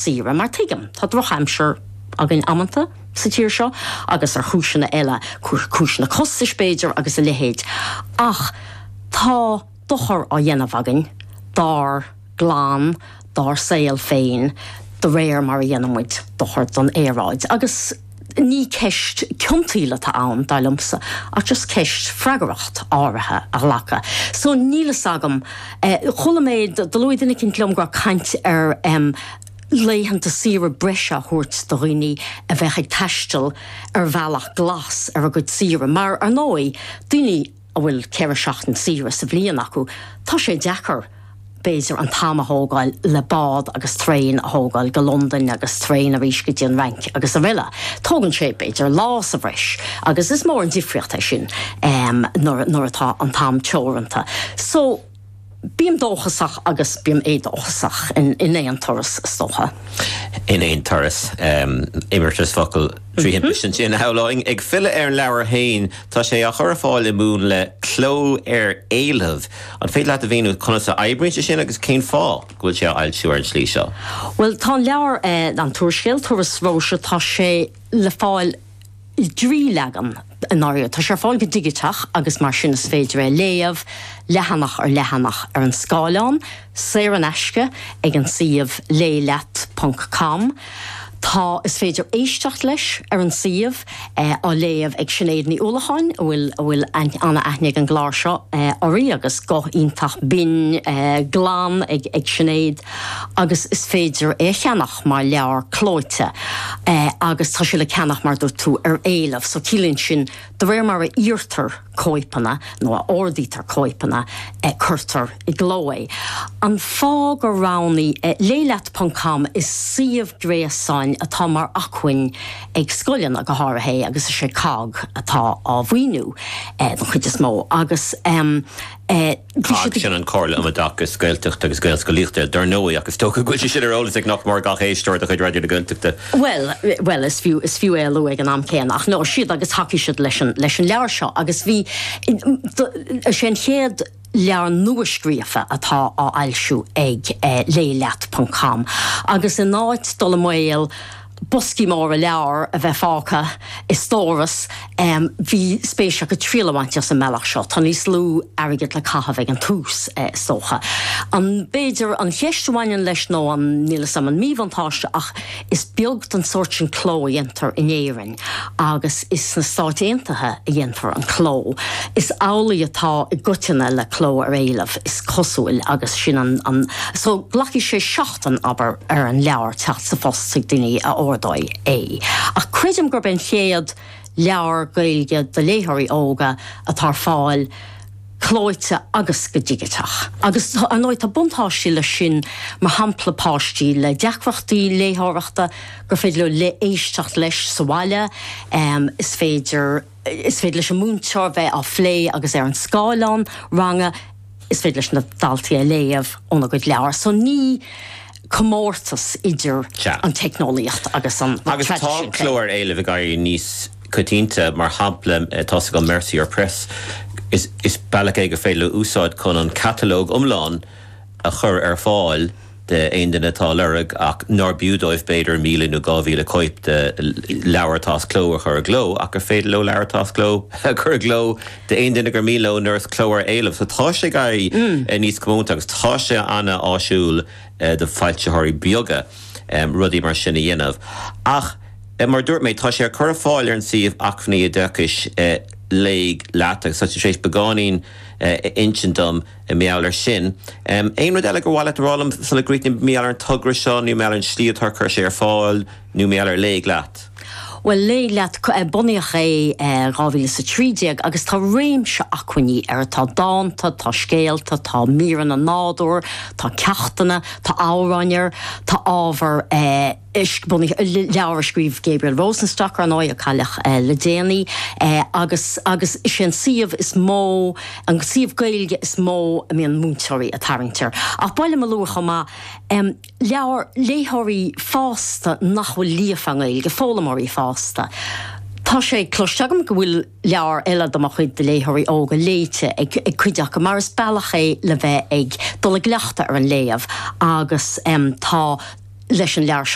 saoire, mar tuigim, tá drochaimsir againn amanta sa tír seo agus ar chúiseanna eile, cúiseanna costais b'fhéidir agus a leithéid, ach tá dochar á dhéanamh againn dár gclann, dár saol féin de réir mar a dhéanann muid dochar don aeráid agus. Ní ceist ciontaíola atá ann, dar liomsa, ach just ceist freagracht áirithe a ghlacadh. So níl fhios agam, chuala mé, do luaigh duine eicínt liom go raibh caint ar em laethanta saoire breise a thabhairt do dhaoine a bheadh ag taisteal ar bhealach glas ar a gcuid saoire, mar ar ndóigh, daoine. a bhfuil ceithre seachtain saoire sa bhliain acu, tá sé deacair, b'fhéidir, an t-am a thógáil le bád agus traein a thógáil go Londain agus traein arís go dtí an Fhrainc agus aroile. Tógann sé, b'fhéidir, lá sa bhreis agus is mór an difríocht é sin nuair atá an t-am teoranta. Bím dóchasach agus bím éadóchasach in aon turas, is dócha. in aon turas, imeartas focal trí thimpiste ansin, shamhlóinn. Ag filleadh ar an leabhar féin, tá sé á chur ar fáil i múnla cló ar éileamh. An féidir leat a mhíniú conas a oibríonn sé sin agus cén fáth go bhfuil sé á fhoilsiú ar an tslí seo? Bhuel, tá an leabhar, An tÚrscéal, Turas Róise, tá sé le fáil. dtrí leagan i ndáiríre, tá sé ar fáil go digiteach agus mar sin is féidir é a léamh leathanach ar leathanach ar an scáileán, saor in aisce, ag an suíomh léighleat ponc com. Tá Is féidir éisteacht leis ar an suíomh, á léamh ag Sinéad Ní Uallacháin, a bhfuil a bhfuil an-aithne ag an gclár seo uirthi agus guth iontach binn glan ag Sinéad, agus is féidir é a cheannach. mar leabhar clóite agus tá sé le ceannach, mar a dúirt tú, ar éileamh. So ciallaíonn sin, de réir mar a iarrtar cóipeanna nó a ordaítear cóipeanna, cuirtear i gcló é. An fáth gur roghnaigh Léigh Leat ponc com, is suíomh gréasáin atá mar acmhainn ag scoileanna go háirithe é agus is é COGG atá á mhaoiniú den chuid is mó agus. Sin an Comhairle um Oideachas Gaeltachta agus Gaelscolaíochta. Dar ndóigh, ach is dócha go bhfuil sé sin ar eolas ag nach mór gach éisteoir de chuid Raidió na Gaeltachta. Bhuel, bhuel, is fiú, is fiú é a lua ag an am céanna, ach no, siad agus thacaigh siad leis an, leis an leabhar seo agus bhí, sé an chéad leabhar nua-scríofa atá á fhoilsiú ag Léigh Leat ponc com agus in áit dul i mbaol, boscaí móra leabhar a bheith fágtha i stóras, bhí spéis acu triail a bhaint as an mbealach seo. Tá níos lú airgid le caitheamh ag an tús, is dócha. An, b'fhéidir, an cheist a bhaineann leis nó an, níl 'fhios a'm, an míbhuntáiste ach is beag den sórt sin cló a dhéantar in Éirinn agus is sna Stáit Aontaithe a dhéantar an cló. Is amhlaidh atá i gcoitinne le cló ar éileamh, is cosúil, agus sin an, an, so, glacfaidh sé den obair ar an leabhar teacht sa phost chuig daoine a ordaíonn é, ach creidim gurb é an chéad leabhar Gaeilge do léitheoirí óga atá ar fáil clóite agus go digiteach. Agus, ar ndóigh, tá buntáiste leis sin, mar shampla páistí le deacrachtaí léitheoireachta, gur féidir leo éisteacht leis sa bhaile, is féidir. Is féidir leis an múinteoir bheith á phlé agus ar an scáileán ranga is féidir leis na daltaí a léamh óna gcuid leabhar so ní comórtas idir an teicneolaíocht agus an traidisiún. Agus tá cló ar éileamh ag éirí níos coitianta, mar shampla atá sé ag an Mercier Press, is bealach é gur féidir leo úsáid chun an catalóg iomlán a chur ar fáil. d'aon duine atá a lorg ach nár b'fhiú dóibh b'fhéidir míle nó dhá mhíle cóip de leabhar atá as cló a chur i gcló ach gur féidir leo leabhar atá as cló a chur i gcló d'aon duine gur mian leo mar is cló ar éileamh. So tá sé ag éirí níos comónta agus tá sé ana-áisiúil do foilsitheoirí beaga rudaí mar sin a dhéanamh ach mar a dúirt mé tá sé á chur ar fáil ar an suíomh Acmhainní Oideachais, Léigh Leat agus tá tú tar éis beagáinín a insint dom. Mar gheall air sin, aon rud eile gur mhaith leat a rá liom sula gcríochnaím, mar gheall ar an togra seo nó mar gheall ar an slí atá ar chuir sé ar fáil nó mar gheall ar Léigh Leat? Bhuel, Léigh Leat, bunaíodh é i 2013 agus tá réimse acmhainní air, tá dánta, tá scéalta, tá míreanna nádúir, tá ceachtanna, tá amhráin air, tá ábhar. Éiscbhunaithe, leabhar a scríobh Gabriel Rosenstock, ar ndóigh, a cailleadh le déanaí, agus agus is é an suíomh is mó, an suíomh Gaeilge is mó a mbíonn múinteoirí ag tarraingt air. Ach b'áil liom a lua chomh maith leabhar léitheoirí fásta nach bhfuil líofa i nGaeilge, foghlaimeoirí fásta. Tá sé cloiste agam go bhfuil leabhar eile de mo chuid do léitheoirí óga léite ag cuid acu mar is bealach é le bheith ag dul i gcleachtadh ar an léamh agus tá, leis an leabhar seo,